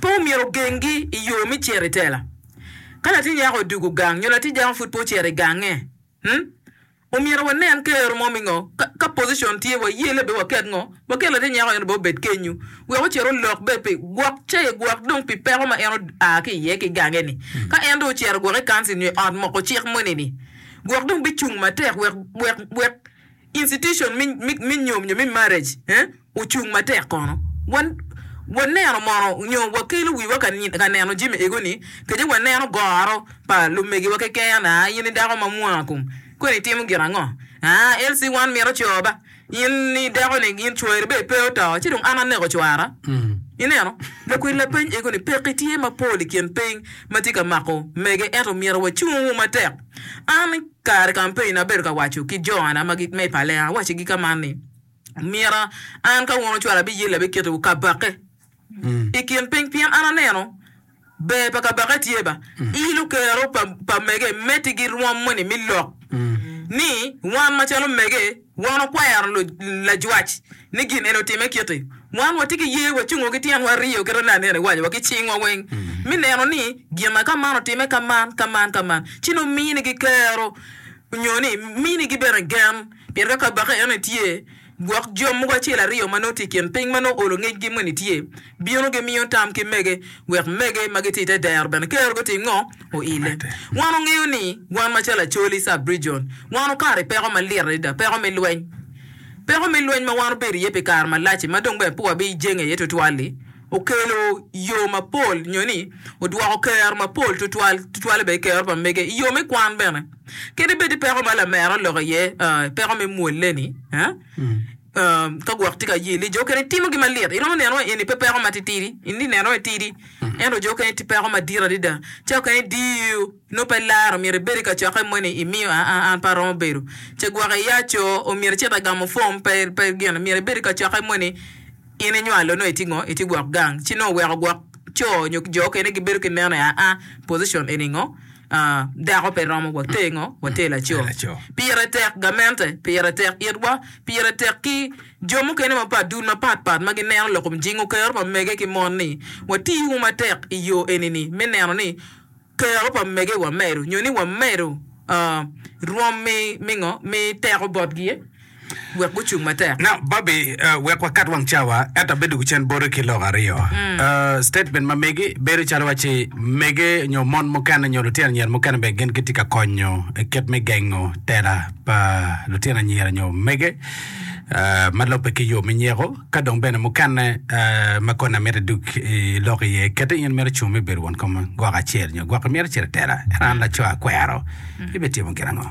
Pe omyero ogengi i yo me cito i tela. Ka latin nyako odwogo gang nyo latin nyako pud pe ocito i gange, omyero wanen kero mo me ngo ka pocition tye waye labbe waket ngo, waket latin nyako en obed obed kenyu wek ocit olok bed pi gwok cayi gwok dong pi peko ma en oa ki iye ki gange ni. Ka en dong ocito gwok i council nyo i ot moko cik moni ni gwok dong bicung matek wek wek wek Institution me nyom nyo me marriage ocung matek kono. Wa neno mono nyo wa kelo wiwa ka neno jami ego ni kece wa neno goro pa lumegi wa keken aa in i dako ma mwaa kom kweni itimo gin ango aa LC wan mito coo ba in i dako ni in cwari bene pe oto ci dong an aneko cwara i neno lakwed lapeny ego ni peki tye mapol i kin piny matye ka mako mege ento myero wa cung matek an Kare kampein abedo ka waco ki Joana ma i palle, awaco gi ka man ni, Omyera an ka wun ocwala abiyelle abiketo wu kabake i kin piny pien an aneno ber pa kabake tye ba i lukero pa mege meti girwom moni mi lok ni wan macalo mege. Wan okwero lajwac ni gin eni otimme kiti. Wan watye ki ye, wacungo ki tyenwa aryo kit ma nene anena iwaci wa, ki cingwa weng, me neno ni gina ka man otimme ka man, ka man, ka man, ci nongo mini gi kero, nyo ni mini gi bene gen, pien ka Kabaka eno ni tye, gwok jo mogo acel aryo ma nongo tye i kin piny ma nongo olo ngecgi moni tye. bino gimiyo tam ki mege wek mege ma gitye i te dero bene kero gutim ngo? Oile. Wan ongeyo ni wan macalo Acholi, Sub-Region, wan okato i peko malit adada, peko me lweny. Peko me lweny ma wan obedo iye pi kare malac-ci ma dong bene pe wabijenge iye twatwal-li okelo yo mapol nyo ni odwoko kero mapol twatwal, twatwale bene kero pa mege i yo me kwan bene. Kadi bed ni peko ma lamera oloko iye peko me mwolle-ni, Ka gwok tye ka ye ni jo okene timo gin malit, iromo neno ni eni pe peko matitidi. In ineno ni tidi, ento jo okene tye peko madit adada. Ca okene diyo, nongo pe ilaro, myero ibed i kacokke mo ni imiyo aa, an pe aromo bedo. Ce gwok iya co, myero icit agamo pom, pe gin. Myero ibed i kacokke mo ni in inywalo nongo itye ngo, itye gwok gang. Ci nongo weko gwok co nyo jo okene gibedo ki neno ni aa, position eni ngo. Dako pe romo wa ter ngo? Wa ter laco. Pire tek gamente, pire tek itwa, pire tek ki jo mukene mapat, dul mapat pat ma gineno lok kom jingo kero pa mege ki mon ni wati wu matek i yo eni ni me neno ni kero pa mege wamedo nyo ni wamedo rwom mi mi ngo? Mi teko botgi. wek gucung matek. Now Barbie, uh, wek wakat wang cawa, ento abedo ki cen boti ki lok aryo. Uh, statement ma megi bedo calo wacci mege nyo mon mukene nyo lutino anyira mukene bene gin gitye ka konyo i kit me gengo tela pa lutino anyira nyo mege uh, ma lobbe ki yo me nyeko, ka dong bene mukene uh, ma koni amiti duk i lok iye, kete in mito cung me bedo won kom gwok acel nyo gwok imito cito i tela, ento an laco akwero, ibitimo gin ango?